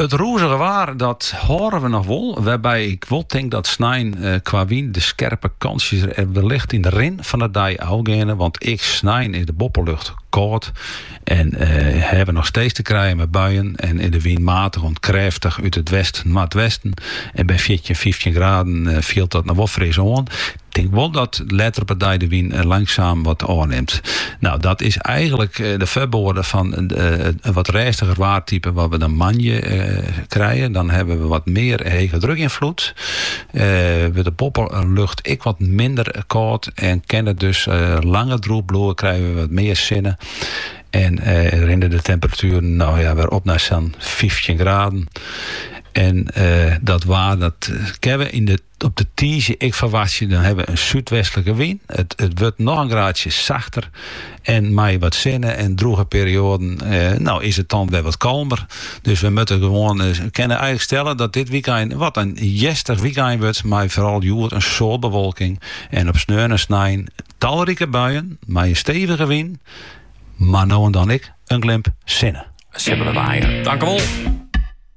It rûzige waar, dat hâlde we noch wol, wêrby ik wol tink dat snein eh, kwa wyn de skerpe kantsjes der wellicht yn de rin fan 'e dei ôfgeane, want ek snein is de boppelucht kâld en eh, hawwe we noch steeds te krijen mei buien en is de wyn matich oant krêftich út it west-noardwesten en by fjirtjin, fyftjin graden fielt dat noch wol fris oan. Tink wol dat letter op 'e dei de wyn langsaam wat ôfnimt. No, dat is eigenlik de foarboade fan in wat rêstiger waartype wat we dan moandei krije. Dan hawwe we wat mear hegedrukinfloed, wurdt de boppelucht ek wat minder kâld en kin it dus langer drûch bliuwe, krije we wat mear sinne en rinne de temperatueren no ja wer op nei sa'n fyftjin graden. En dat waar dat kinne we yn de. Op de tiisdei ek ferwachtsje, dan hawwe we in súdwestlike wyn. It wurdt noch in graadsje sachter en mei wat sinne en drûge perioaden no is it dan wer wat kalmer. Dus we moatte gewoan kinne eigenlik stelle dat dit wykein wat in hjerstich wykein wurdt mei foaral hjoed in soad bewolking en op sneon en snein talrike buien mei in stevige wyn, mar no en dan ek in glimp sinne. Tankewol.